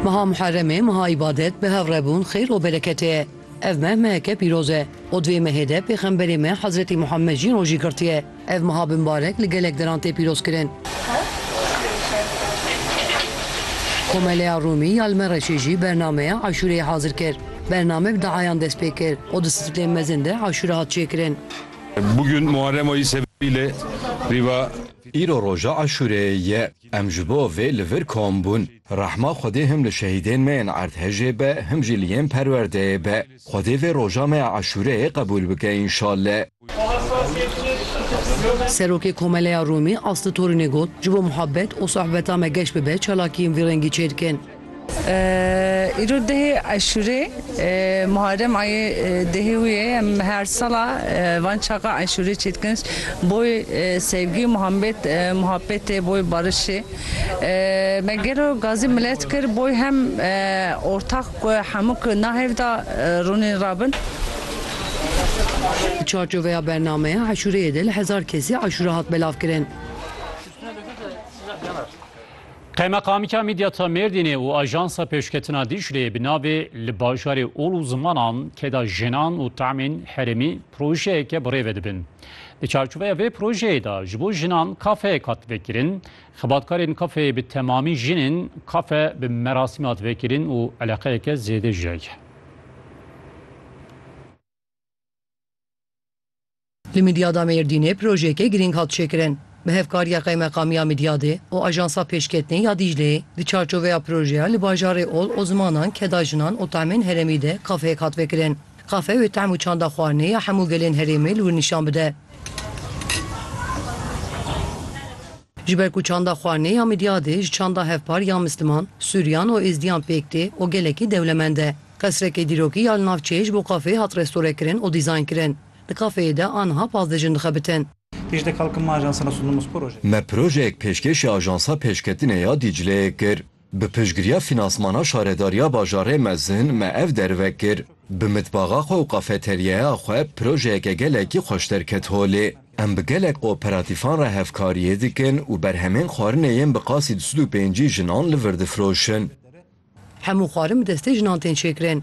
Meha Muherremê, meha îbadet, bihevrebûn, xêr û bereketê ye. Ev meh meheke pîroz e û di vê mehê de pêxemberê me Hezretî Muhemmed jî rojî girtiye. Ev meha bi mbarek li gelek deran tê pîrozkirin. Komeleya Rûmî ya li Mereşê jî bernameya Aşûreyê hazir kir. Bername bi diayan dest pê kir û di stiflên mezin de aşûre hat çêkirin. Bugün Muharrem ayı sebebiyle riva. Îro roja Aşûreyê ye. Em ji bo vê li vir kom bûn. Rehma Xwedê him li şehîdên me yên erdhejê be him jî li yên perwerdeyê be. Xwedê vê roja me ya Eşûreyê qebûl bike înşalle. Serokê Komeleya Rûmî Aslı Torunê got, Ji bo muhabbet û sohbeta me geş bibe çalakiyên vî rengî çêdikin. Îro dehê Eşûrê Muharrem ayê dehê wî ye em her sala van çaxa Eşûrê çê dikin boy sevgî Muhammed muhabbetê boy barişê me gelo gazî milet kir boy hem ortax ku hemû ku na hev de rûnên rabin. Di çarçoveya bernameya Eşûreyê de li hezar kesî Eşûra hat belavkirin. Qeymeqamiya Midyata Mêrdînê û Ajansa Pêşketina Dîcleyê bi navê Li bajarê ol û zimanan keda jinan û tamên herêmî projeyeke bi rê ve dibin. Di çarçoveya vê projeyê de ji bo jinan kafeyek hat vekirin. Xebatkarên kafeyê bi temamî jin in, kafe bi merasîm hat vekirin û eleqeyeke zêde jî heye. Li Midyada Mêrdînê projeyeke girîng hat çêkirin bi hevkariya Qeymeqamiya Midyadê û Ajansa Pêşketinê ya Dîcleyê. Di çarçoveya projeya li bajarê Ol, Osmanan, Keda Jinan û Tahmên Heremî de kafeyek hat vekirin. Kafe wê tehm û çanda xwarinê ya hemû gelên herêmê li wir nîşan bide. Ji ber ku çanda xwarinê ya Midyadê ji çanda hevpar ya Misliman, Sûriyan û Êzdiyan pêk tê û gelekî dewlemend e. Qesrekê dîrokî ya li nav çêj bo kafeyê hat restorekirin û dîzaynkirin. Di kafeyê de aniha pazdeh jin dixebitin. Me projeyek pêşkêşî Ajansa Pêşketinê ya Dîcleyê kir. Bi piştgiriya fînansmana Şaredariya Bajarê Mezin me ev derve kir. Bi mitbaxa xwe û kafeteryeya xwe projeyeke gelekî xweş derket holê. Em bi gelek kooperatîfan re hevkariyê dikin û berhemên xwarinê yên bi qasî du sed û pêncî jinan li vir difroşin. Hemû xwarin bi destê jinan tên çêkirin.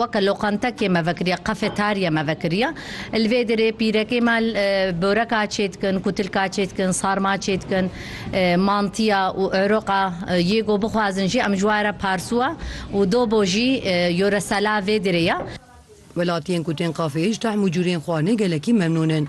weke loqantekê me vekiriye, kafeterya me vekiriye. Li vê derê pîrekê me boreka çêdikin, kutilka çêdikin, sarma çêdikin, mantiya û êroqa yê ku bixwazin jî em ji we re parsuwa û dobo jî yoresela vê derê ye. Welatiyên ku tên kafeyê ji tehm û cûrên xwarinê gelekî memnûn in.